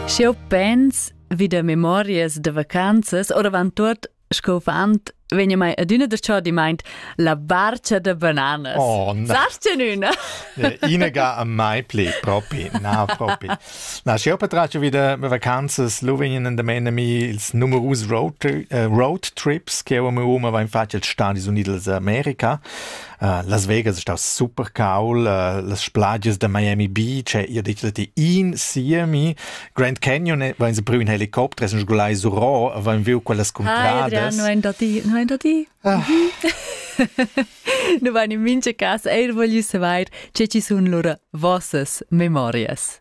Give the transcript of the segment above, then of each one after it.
Sch'eu pens vi da memorias da vacanzas, oravant tuot sco fant, vegna mai adüna da chodimaint la barcha da bananas. Oh, na. Sast üna? Ina ga a mai pli, propi, na, propi. Na, sch'eu patraggio vi da vacanzas, lu vegnan in damen a mi ils numerus road, uh, road trips che eu am homa vain fatg als Stadis Uniti d'America. Uh, Las Vegas è stà super caul, uh, las spladias da Miami Beach, eh, io ditg ti in siemi. Grand Canyon eh, vain se preu in helicopter, sun sgulai su Ro, vain viu quellas Ah, cuntradas. no è da ti, no è da ti. Ah. nu vain in mincha cas eir voglio saver, che ci sun lura vossas memorias.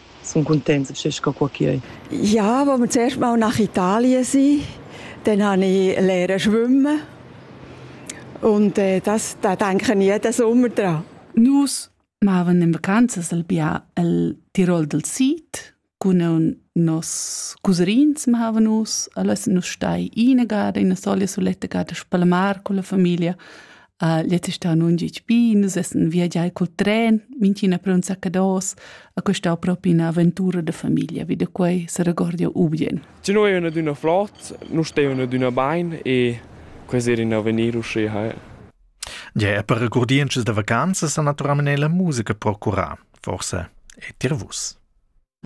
Sun cuntents schi sco co chi ei. Ja, wo wir zuerst mal nach Italien sind, dann habe ich lernen schwimmen. Und äh, das, da denke ich jeden Sommer dran. Nus machen in vacanzas al bia al Tirol del Sid cun nos cousins machen nus, allora nus stai in gada in solia suletta gada a Spalamar con la famiglia Uh, jetzt ist da nun gitg bi, nus essen viagiai col tren, minchina pronza cados, a questa propi una avventura de famiglia, wie de quei se regordia ubien. Ci noi una d'una flot, nu ste una d'una bain e quasi in avvenir usce hai. Ja, per recordiences de vacanzas a naturalmente la musica procura, forse e tirvus.